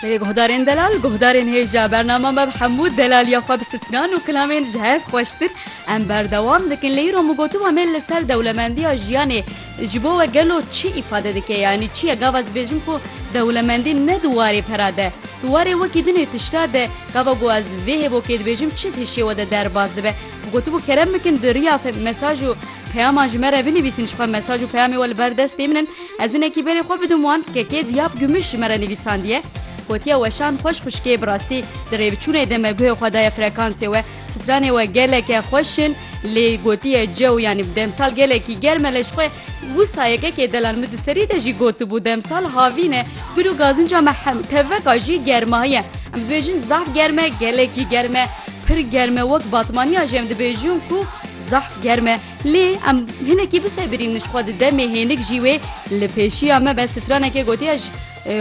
Berê guhdarên delal, guhdarên hêja bernama me bi hemû delaliya xwe bi stnan û kilamên ji hev xweştir em berdewam dikin. Lê îro min gotiba me li ser dewlemendiya jiyanê ji bo we gelo çi îfade dike yanî çi ye gava ez dibêjim ku dewlemendî ne di warê pera de di warê wekî dinê tişta de gava ku ez vê hêbokê dibêjim çi di hişê we de derbas dibe. Min gotibû kerem bikin di riya mesaj û peyaman ji me re binivîsin ji xwe mesaj û peyamê we li ber destê min in. Ez hinekî berê xwe bidim wan kekê Diyab Gümüş ji me re nivîsandiye, gotiye Weşan xweş xwişkê bi rastî di rêbiçûnê de me guhê xwe daye frekansê we, stranê we geleke xweş in lê gotiye cew yanî bi demsal gelekî germ e lê ji xwe wisa yekekê delan min di serî de jî gotibû demsal havîn e gul û gazinca me hem teveka jî germahiye em dibêjin zaf germ e gelekî germ e pir germ e wek batmaniya jî em dibêjin ku zaf germ e. Lê em hinekî bisebirîn ji xwe di demê hênik jî wê li pêşiya me be straneke gotiye ji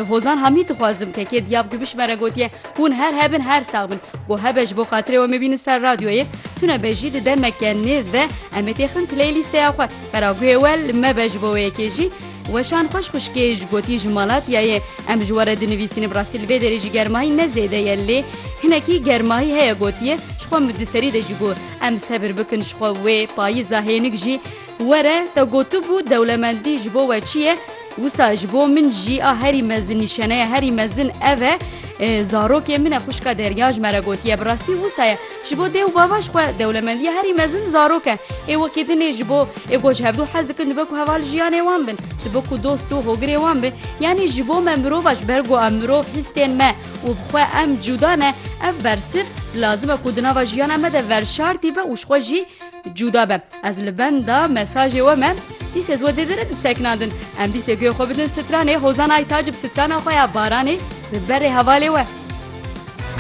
Hozan Hamî dixwazim kekê diyab ku bişmere gotiye hûn her hebin her sax bin ku hebe ji bo xatirê we mebînin ser radyoyê tune be jî di demeke nêz de em ê têxin playlîsteya xwe qeraguhê we li me be ji bo wê yekê jî Weşan xweş xuşkê ji gotî ji malatiyayê em ji were dinivîsîn bi rastî li vê derê jî germayî ne zêde ye lê hinekî germayî heye gotiye ji xwe min di serî de jî got Em sebir bikin ji xwe wê payîza hênik jî were, te gotibû dewlemendî ji bo we çi ye, wisa ji bo min jî a herî mezin nîşaneya herî mezin ev e, zarokê min e xwişka Derya ji me re gotiye bi rastî wisa ye. Ji bo dê û bava ji xwe dewlemendiya herî mezin zarok e. Ê wekî din ê ji bo ê ku ji hevdu hez dikin dibe ku heval jiyanê wan bin, dibe ku dost û hogirê wan bin. Yanî ji bo me mirovaş ber ku em mirov hîstên me, û bi xwe em cûda ne, ev bersif lazim e ku di nava jiyana me de verşartî be û ji xwe jî cûda be. Ez li benda mesajê we me dîs ez we zêde ne dib sekinandin. Em dîsê guya xwe bidin stranê Hozan Aytac bi strana xwe ya Baranê bi berê hevalê we.